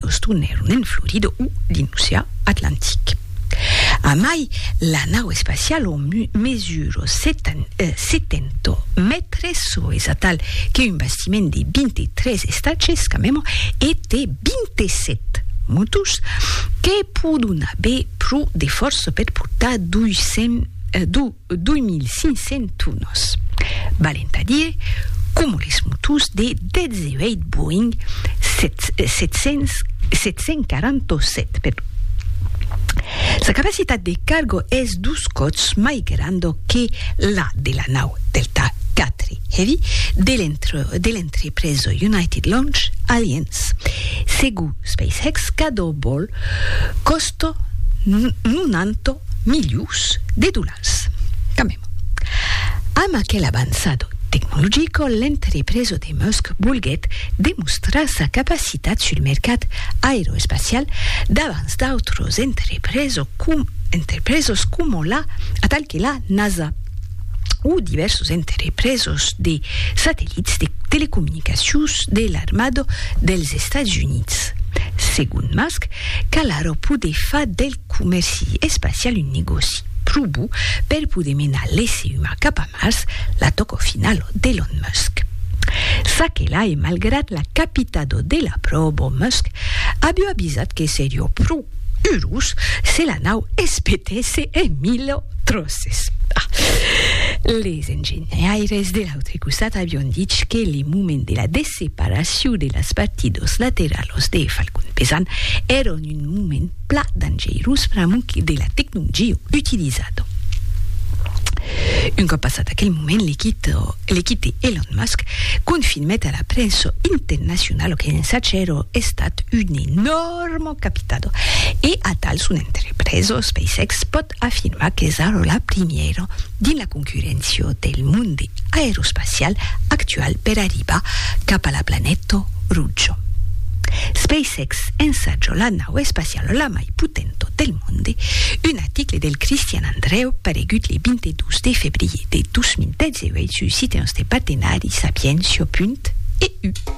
Boston e Ronen Florida o dins l'ocean Atlantic. A mai, la nau espaciala mesura 70 mètres, çò es atal que un bastiment de 23 estages quand même, e té 27 motors que pòdon aver pro de fòrça per portar 200 passatgièrs. 2.500 tunos, valent a dire coma les motors de 18 Boeing 747. Sa capacitat de cargo es dos còps mai granda que la de la nau Delta IV Heavy de l'entrepresa United Launch Alliance, segur SpaceX cadó vol còsta 90 milions de dolars. Camèm, amb aquel avançado tecnologico, l'entrepresa de Musk volguèt demostrar sa capacitat sul mercat aeroespacial davans d'autras entrepresas coma la, atal que la NASA. o divèrsos entrepresos de satellits de telecomunicacions de l'armada dels Estats Units. Segon Musk, cal ara poder far del comèrci espacial un negòci pro bo per poder menar l'èsser umà cap a Mars, la tòca finala d'Elon Musk. Çaquelà e malgrat la capitada de la pròba, Musk aviá avisat que seriá pro Urus, se la nau espetèsse en mille tròces. Ah! Les engenhaires de l'autre costat avion dich que le moment de la desseparacion de las parti dos lateralos de Falcon Pesant èron un moment pla dangeirós pr'amuc de la tecnongio utilizado. Un còp passat aquel moment, le quito, le quite Elon Musk confirmèt a la prènsa internacionalo que l'ensatge èro estat un enòrme capitado e atal son entrepresa SpaceX pòt afirmar qu'es ara la primièra dins la concurréncia del monde aeroespacial actual per arribar cap a la planeta roja. SpaceX ensatja la nau espaciala la mai potenta del monde, un article del Christian Andreu paregut le 22 de febrier de 2018 sus Citèns de Partenari, Sapientia. EU.